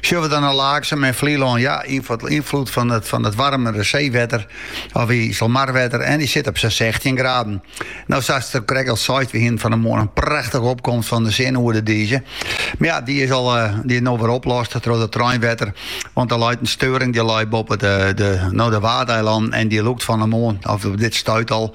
Sjogge we dan nei Laaksum en Flylân. Ja, ynfloed fan it, fan it warmere seewetter, of Iselmarwetter, en dy sit op sa'n 16 graden. No sa'st krekt al seist, we hienen fan 'e moarn in prachtige opkomst fan de sin oer de dize. Mar ja, dy is al, dy is no wer oplost troch it reinwetter, want der leit in steuring, dy lei boppe de, de, no de Waadeilannen en dy lûkt fan 'e moarn, of dit stuit al,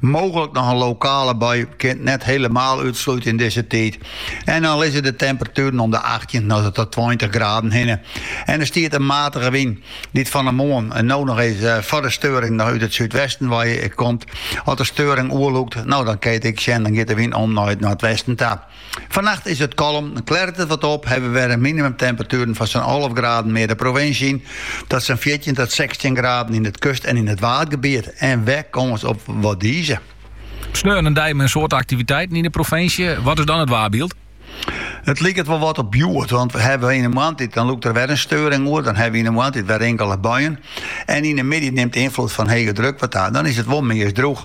Mooglik noch in lokale bui, kinst net helemaal útslute yn dizze tiid. En dan lizze de temperatueren om de achttjin oant ta tweintich graden hinne en der stiet in matige wyn, dy't fan 'e moarn en no noch even foar de steuring noch út it súdwesten wei komt. As de steuring oer lûkt, no dan kin je it ek sjen, dan giet de wyn om nei it noardwesten ta. Fannacht is it kalm, klêret it wat op, hawwe wer in minimumtemperatueren fan sa'n alve graden mear de provinsje yn, ta sa'n fjirtjin ta sechstjin graden yn it kust- en yn it waadgebiet, en wer kâns op wat dize. Sneon in dei mei in soad aktiviteiten yn de provinsje. Wat is dan it waarbyld? It liket wol wat op hjoed, want we hawwe yn de moarntiid dan lûkt der wer in steuring oer, dan hawwe we yn de moarntiid wer inkele buien en yn de middei nimt de ynfloed fan hege druk wat ta, dan is it wol meast droech.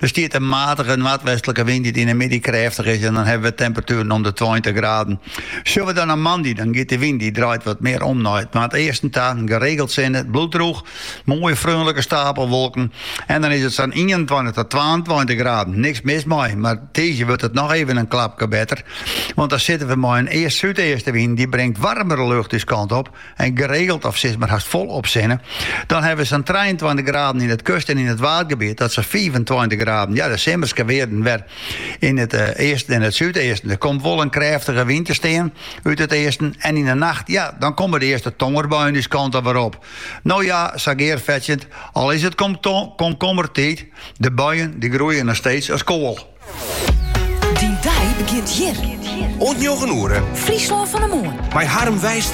Der stiet in matige noardwestlike wyn dy't yn 'e middei krêftich is en dan hawwe we temperatueren om de tweintich graden. Sjogge we dan nei moandei, dan giet de wyn, dy draait wat mear om nei it noardeasten ta, geregeld sinne, it bliuwt droech, moaie freonlike stapelwolken en dan is it sa'n ienentweintich ta twaentweintich graden. Niks mis mei, mar tiisdei wurdt it noch even in klapke better, want dan sitte we mei in east-súdeastewyn, dy bringt warmere lucht ús kant op. en geregeld of sis mar hast folop sinne, dan hawwe we sa'n 23 graden yn it kust- en yn it waadgebiet, ta sa'n 25 graden. Ja, de simmerske wearden wer yn it eh, easten en it súdeasten. Der komt wol in krêftige wyn te stean út it easten en yn de nacht, ja, dan komme de earste tongerbuien ús kant alwer op. No ja, sa gearfetsjend, al is it komkommertiid, de buien dy groeie noch steeds as koal. Dyn dei begjint hjir. Oant njoggen oere. Fryslân fan 'e Moarn. Mei Harm Wijstra.